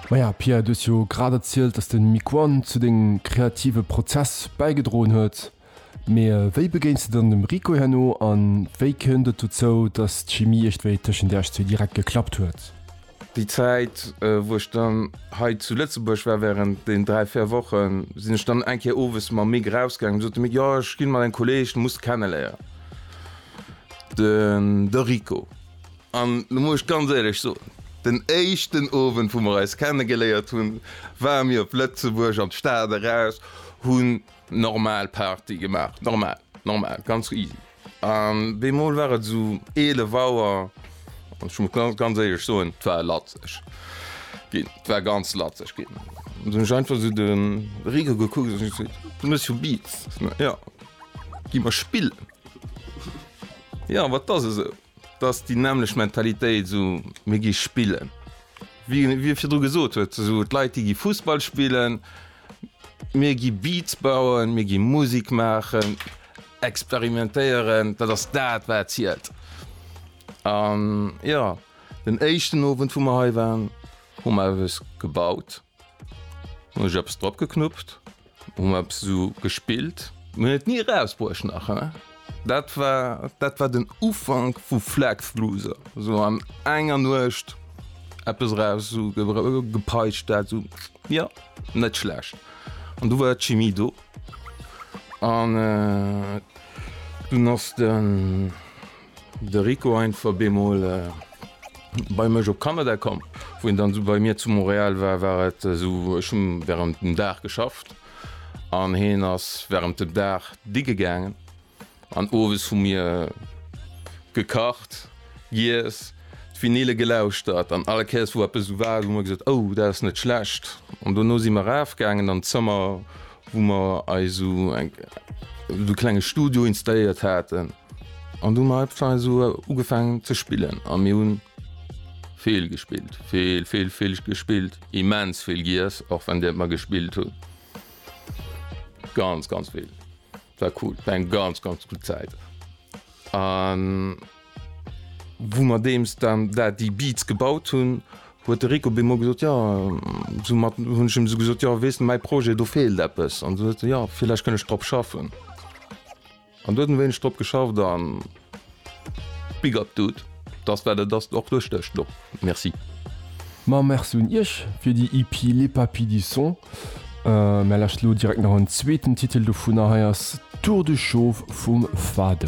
Maja Pierre, du hues jo grad erzielt, dass de Miquon zu dengem kreative Prozess bäigedroen huet. Mee wéi begéins de dann dem Rico herno a wéi kënnt et dozou, dass d'Chimie iergendwéi tëschent Iech zwee direkt geklappt huet? Déi Zäit, wou ech dann hei zu Lëtzebuerg war, wärend deenen dräi, véier Wochen, sinn ech dann eng Kéier owes mam Mick erausgaangen. Du sot de Mick, jo, ech ginn mat engem Kolleeg, de muss de kenneléieren, de Rico. An lo muss ech ganz éierlech soen, den éischten Owend wou mer eis kenne geléiert hunn, ware mir op Lëtzebuerg an d'Stad eraus, hunn normal Party gemaach, normal, normal, ganz easy. An bemol war et esou 11 Auer an ech muss ganz, ganz éierlech soen, 't war latzeg ginn, 't war ganz latzeg ginn. An dunn hunn ech einfach esou de Rico gekuckt an ech gesot, Du méchs jo Beats, ne? Jo, gi mer spillen. Jo, wat ass esou? T'ass déi nämmlecht Mentalitéit, esou mir gi spillen, wéi e virdru gesot huet, esou d'Leit déi gi Fussball spillen, mir gi Beats bauen, mir gi Musik maachen, experimentéieren, dat ass dat wat zielt. An jo, den éischten Owend wou mer hei waren, hu mer eppes gebaut. Hun ech eppes drop geknuppt, hun mer eppes esou gespillt. Mir hun et ni erausbruecht nach he. Dat war, dat war den Ufank vu Flexluuser, esou an enger Nuecht eppes eraus esou gepeitscht, dat esou, jo, net schlecht. An du war d'Chimie do, an dunn ass de De Rico einfach bemol bei mech op Kanada komm, wou en dann esou bei mir zu Montréal war, war et esou ech hunn während dem Dag geschafft an heen ass während dem Dag digge gaangen an owes hu mir gekacht, giess, d'Vinyle gelauschtert an all Kéiers wou eppes esou war hu mer gesot oh dat ass net schlecht an dono si mer raaf gaangen an d'Zëmmer wou mer eis esou eng esou klenge Studio installéiert haten. An du mei Pfei so ugefang ze spillen a mir hunn. Vill gespillt, vill vill vill gespillt, immens vill giess, och wann Dir mer gespillt hunn. Ganz ganz vill war cool, war eng ganz ganz gutt Zäit an wou mer deems dann dat déi Beats gebaut hunn, huet de Rico Bemol gesot, jo soumat hunn ech em esou gesot, jo weess de mäi Projet do feelt eppes an esou huet se jo villäicht kënn ech drop schaffen. An do huet en wéineg drop geschafft an big up dude, dass dat et ass och duerch dech do. Merci. Ma merci un iech fir déi EP Les Papis du Son. Mär lauschteren elo direkt nach en zweeten Titel dovunner, hei ass Tour de Chauve vum Fade.